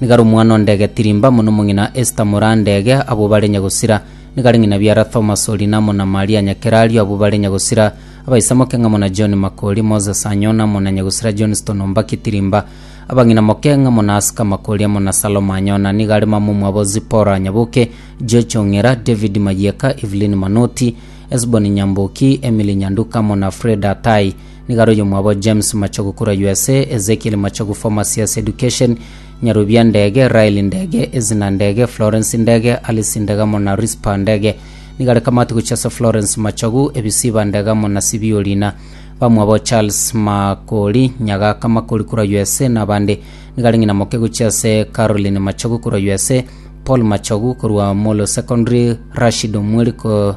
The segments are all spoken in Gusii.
Nigo are omwana o ndege Tirimba amo nomong'ina Esta mora ndege, abwo bare nyagosira. Nigo are ng'ina biara Thomas o Linamo na Maria Nyakerario, abwo bare nyagosira. Abaisamoke ng'amo na John Makori, Moses Anyona amo na nyagosira Johnston Ombaki Tirimba. Abang'ina moke ng'amo na Aska Makori amo na Salome Anyona. Nigo are mama omwabo Zipporah Nyaboke, George Ong'era, David Mayieka, Evelyn Manoti, Esbon Nyamboki, Emily Nyanduka amo na Freda Atai. Nigaro oyomwabo James Machogu korwa USA, Ezekiel Machogu former CS Education, Nyarubia Ndege, Raeli Ndege, Ezina Ndege, Florence Ndege, Alice Ndege amo na Rizpah Ndege. Nigare kamati gochia ase Florence Machogu, Ebisiba Ndege amo na Sibio Lina. Bamwabo Charles Makori, Nyagaka Makori korwa USA na abande. Nigare ng'ina moke gochia ase Caroline Machogu korwa USA, Paul Machogu korwa Molo Secondary, Rashid Omweri ko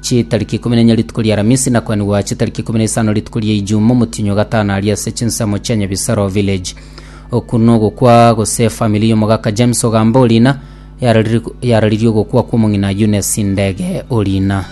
Chitariki ikomi nenya rituko ri'Aramisi, na kwenigwa chitariki ikomi na isano rituko ri'Eijuma, omotienyi o gatano aria ase chinsemo chia Nyabisaro Village. Oku nogokwa gose efamiri y'omogaka James Ogamba Orina yarariri- yararirie ogokwa kw'omong'ina Eunice Ndege Orina.